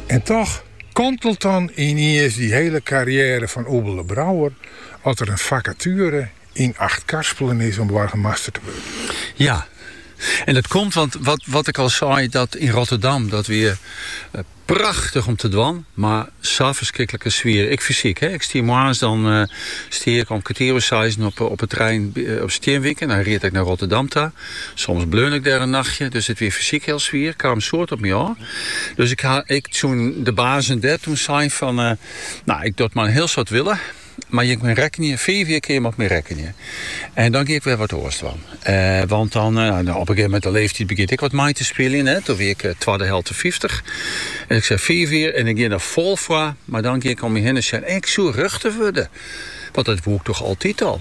En toch kantelet dan yniens dy hiele karriêre fan Oebele Brouwer as der in fakatuere yn Achtkarspelen is om boargemaster te wurden. Ja, en dat komt want wat, wat ik al sei, dat yn Rotterdam, dat wie prachtich om te dwaan, mar sa ferskriklike swier. Ik fysiek, hè. Ik stie moarns dan eh, stie ik om kertier oer seizen op, op de trein op Stienwyk en dan ried ik naar Rotterdam ta. Soms bleaun ik dêr in nachtje, dus it wie fysyk hiel swier, kaam soad op my ôf. Dus ik ha ek tsjin de bazen dêr toen sein fan, no, ik doch it mei in hiel soad wille, mar jim kinne op my rekkenje, fiif jier kinne je mei my rekkenje. En dan gean ik wer wat oars dwaan. Want dan, op in gegeven moment de leeftijd begjint ek wat mei te spyljen, hè, toen wie ik twadde helte fyftich. En ik sei fiif jier en ik gean der fol foar, maar dan gean ik om me hinne sjen, ik soe rjochter wurden, want dat woe ik toch altyd al.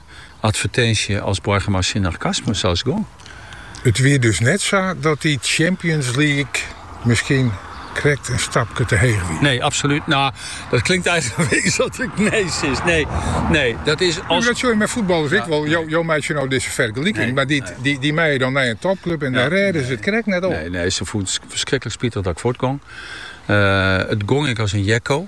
advertinsje as boargemaster tsjin Arcasmus, sa is gong. It wie dus net sa dat dy Champions League miskien krekt in stapke te heech wie? Nee, absolút. No, dat klinkt eigenlik in beetje as ik nee sis. Nee, nee, dat is als. Dat sjoch je met voetballers ik wel. Jo, jo meitsje nou deze vergelijking, maar die, die, die mij dan naar een topclub en daar redden ze het krek net op. Nee, nee, ze voelt verschrikkelijk spietig dat ik voortgong. Uh, het gong ik als een jekko.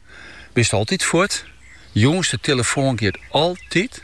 Bist altyd fuort? Jûns, de telefoan giet altyd.